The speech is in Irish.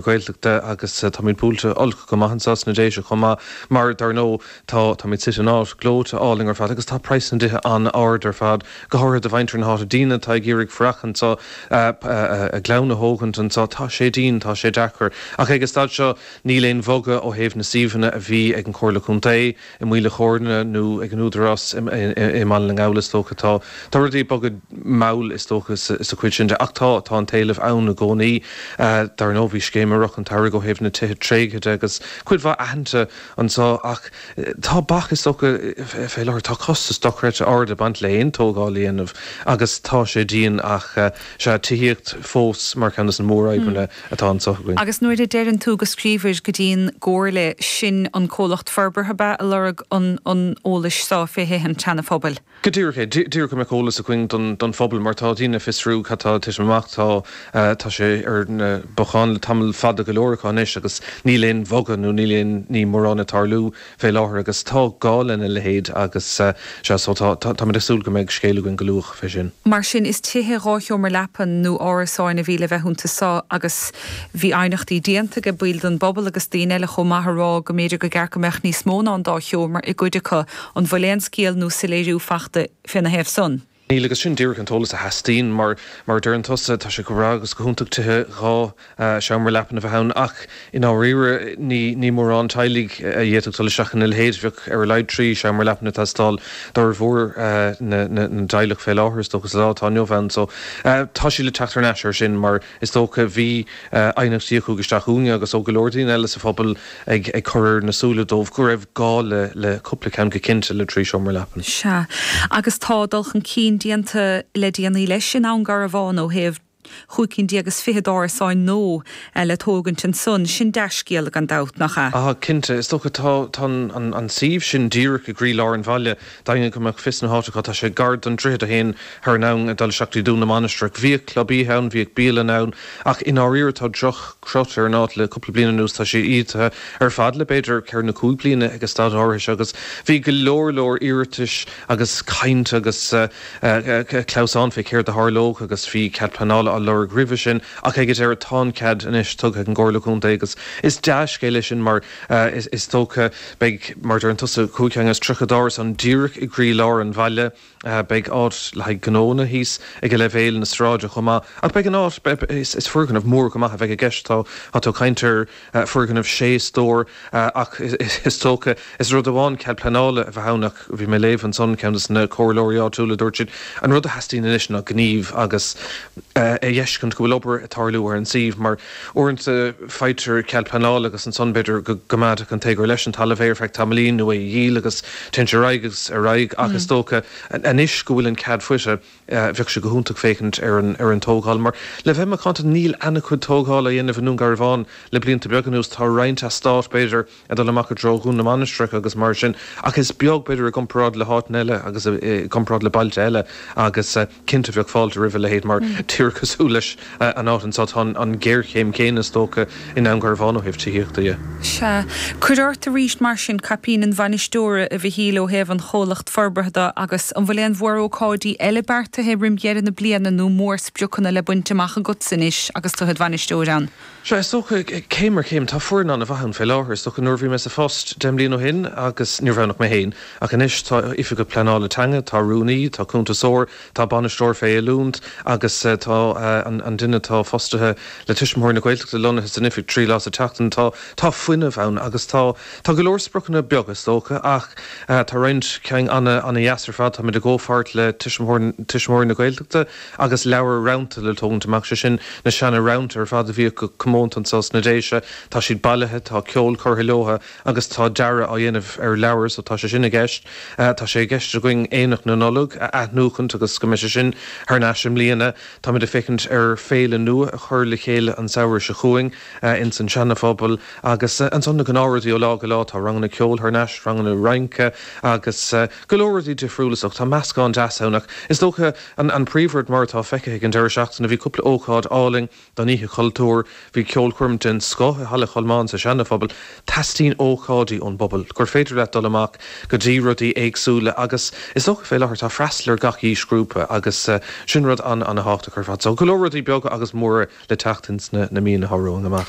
Gaeltachta agus táimid buailte olc go maith anseo sna Déise chomh maith mar, dar ndóigh, tá táimid suite in áit gleoite álainn ar fad agus tá praghas na dtithe an-ard ar fad, go háirithe do mhuintir na háite, daoine atá ag iarraidh fanacht anseo, a gclann a thógaint anseo, tá sé dian, tá sé deacair. Ach ag an staid seo níl aon bhogadh ó thaobh na suíomhanna a bhí ag an Chomhairle Contae, i Maoil an Choirnigh nó ag an Údarás i mBaile na nGall, is dócha. Tá rudaí ag bogadh mall, is dócha, sa chuid sin de, ach tá an t-éileamh ann i gcónaí. Dar ndóigh, bhí scéim i rith an tsamhraidh ó thaobh na dtithe tréigthe de agus cuid mhaith aitheanta anseo, ach tá bac, is dócha, fé láthair. Tá costas dochreidte ard ag baint le haon tógáil a dhéanamh agus tá sé dian, ach. Sea, tithíocht fós mar cheann de na mórfhadhbanna atá anseo againn. Agus nuair a deireann tú go scríobhair go dtí an gComhairle, sin an comhlacht forbartha ab ea a lorg an eolais so fé thithe an tSeanaphobail? Go díreach é. Díreach go mbeadh eolas againn don phobal mar tá daoine ag fiosrú cad tá ag titim amach. Tá, tá sé ar na bacáin le tamall fada go leor acu anois agus níl aon bhogadh nó níl aon ní mórán ag tarlú. fé láthair agus tá gá lena leithéid agus sea so tá tá muid ag súil go mbeidh scéal againn go luath fé sin. Mar sin, is tithe dhá sheomra leapan nó árasáin a bhí le bheith iontu so agus bhí aighneachtaí déanta aige baill don bpobal agus daoine eile chomh maith a rá go mb'fhéidir gur cheart go mbeadh níos mó ná an dá sheomra i gcuid acu, an bhfuil aon scéal nó soiléiriú fachta féna thaobh san? Níl, agus sin díreach an t-eolas a theastaíonn. Mar a deireann tusa, tá sé go breá agus go hiontach tithe dhá seomra leapan a bheith ann ach i ndáiríre ní mórán teaghlaigh a d'fhéadfadh dul isteach ina leithéid. Bheadh ar a laghad trí sheomra leapan ag teastáil d'fhormhór na dteaghlach fé láthair, is dócha, sa lá atá inniu ann. So, tá sé le teacht thar n-ais air sin mar. is dócha. Bhí aighneachtaí a chuaigh isteach chugainne agus ó go leor daoine eile sa phobal á chur ar a súile dóibh go raibh gá le cúpla ceann, go cinnte le trí seomra leapan. Sea. Agus tá dul chun cinn déanta le déanaí leis i nDún Garbhán ó thaobh chúig cinn déag is fiche d'árasáin nua le tógaint ansan. Sin dea-scéala gan dabht, nach ea? Cinnte. Is dócha, tá an suíomh sin díreach i gcroílár an bhaile, d'éinne go mbeadh fios na háite acu, tá sé gar don droichead a théann thar an abhainn ag dul isteach go dtí Dún na Mainistreach. Bhíodh club oíche ann, bhíodh bialann ann, ach i ndáiríre tá droch-chrut ar an áit le cúpla bliain anuas, tá sé ídithe ar fad le b'fhéidir ceithre nó cúig bliana ag an staid áirithe seo agus bhí go leor leor iarratais agus caint agus clamhsán fé céard a tharlódh agus níos mó cead pleanála á lorg roimhe sin ach ag an deireadh tá an cead anois tugtha ag an gComhairle Contae agus is dea-scéal é sin mar Is dócha, beidh, mar a deireann tusa, cúig cheann is tríocha d'árasáin díreach i gcroílár an bhaile. Beidh áit le haghaidh gnónna thíos aige leibhéal na sráide chomh maith. Ach beidh an áit, is foirgneamh mór go maith a bheidh i gceist. Tá, tá, tá caint ar foirgneamh sé stór ach is dócha, is rud amháin cead pleanála a bheith ann ach bhí mé ag léamh ansan, ceann dos na comhairleoirí áitiúla, dúirt siad, an rud a theastaíonn anois ná gníomh agus a dh'fheiscint go bhfuil obair ag tarlú ar an suíomh mar, Uaireanta faightear cead pleanála agus ansan b'fhéidir go gcoimeádfadh an tógálaí leis an talamh é ar feadh tamaillín nó é a dhíol agus téann sé ar aghaidh agus ar aghaidh ach is dócha anois go bhfuil an cead faighte bheadh sé go hiontach féachaint ar an tógáil mar le bheith macánta níl ana-chuid tógála á dhéanamh i nDún Garbhán le blianta beaga anuas, tá roinnt eastát b'fhéidir ag dul amach i dtreo Dhún na Mainistreach agus mar sin ach is beag b'fhéidir i gcomparáid le háiteanna eile agus i gcomparáid le bailte eile agus. Cinnte bheadh fáilte roimh a leithéid mar díreach cosúil leis an áit anseo, tá an ghéarchéim chéanna is dócha i nDún Garbhán ó thaobh tithíochta dhe. Sea. Cuir ort aríst mar sin caipín an bhainisteora, a Mhichíl, ó thaobh an Chomhlacht Forbartha do, agus an bhfuil aon mhórócáidí eile beartaithe roim dheireadh na bliana nó mórspriocanna le baint amach agatsa anois agus tu id bhainisteoir ann? Sea, is dócha, céim ar chéim. Tá foireann an-mhaith ann fé láthair. Is dócha, nuair a bhí mé sa phost deich mbliana ó shin, agus níorbh ann ach mé féin, ach anois tá Oifigeach Pleanála Teanga, tá Rúnaí, tá Cuntasóir, tá Bainisteoir fé Oiliúnt agus tá an duine atá fostaithe le Tuismitheoirí na Gaeltachta lonnaithe san oifig trí lá sa tseachtain. Tá, tá fuinneamh ann agus tá, tá go leor spriocanna beaga, is dócha, ach tá roinnt ceann ana dheas ar fad. Táimid i gcomhpháirt le Tuismitheoirí na Gaeltachta. agus leabhar rannta le tógaint amach, sé sin, na seana rannta ar fad a bhíodh go comónta anso sna Déise, tá siad bailithe, tá ceol curtha leotha agus tá dearadh á dhéanamh ar leabhair so tá sé sin i gceist. Tá sé i gceist againn Aonach na Nollag a athnuachaint agus go mbeidh sé sin thar n-ais i mbliana. Táimid ag féachaint ar féile nua a chur le chéile an samhradh seo chugainn ins an Seana-Phobal agus ansan na gnáth rudaí ó lá go lá, tá ranganna ceoil thar n-ais, ranganna rince agus go leor rudaí difriúla so tá meascán deas ann ach is dócha, An príomhrud, mar atá feicthe ag an deireadh seachtaine, bhí cúpla ócáid álainn don Oíche Chultúir. Bhí ceolchoirm den scoth i Halla Cholmáin sa Seanaphobal. Teastaíonn ócáidí ón bpobal, gur féidir leat dul amach go dtí rudaí éagsúla agus is dócha fé láthair tá freastal ar gach aois ghrúpa agus sin rud ana-ana-thábhachtach ar fad. So go leor rudaí beaga agus móra le teacht ins na míonna atá romhainn amach.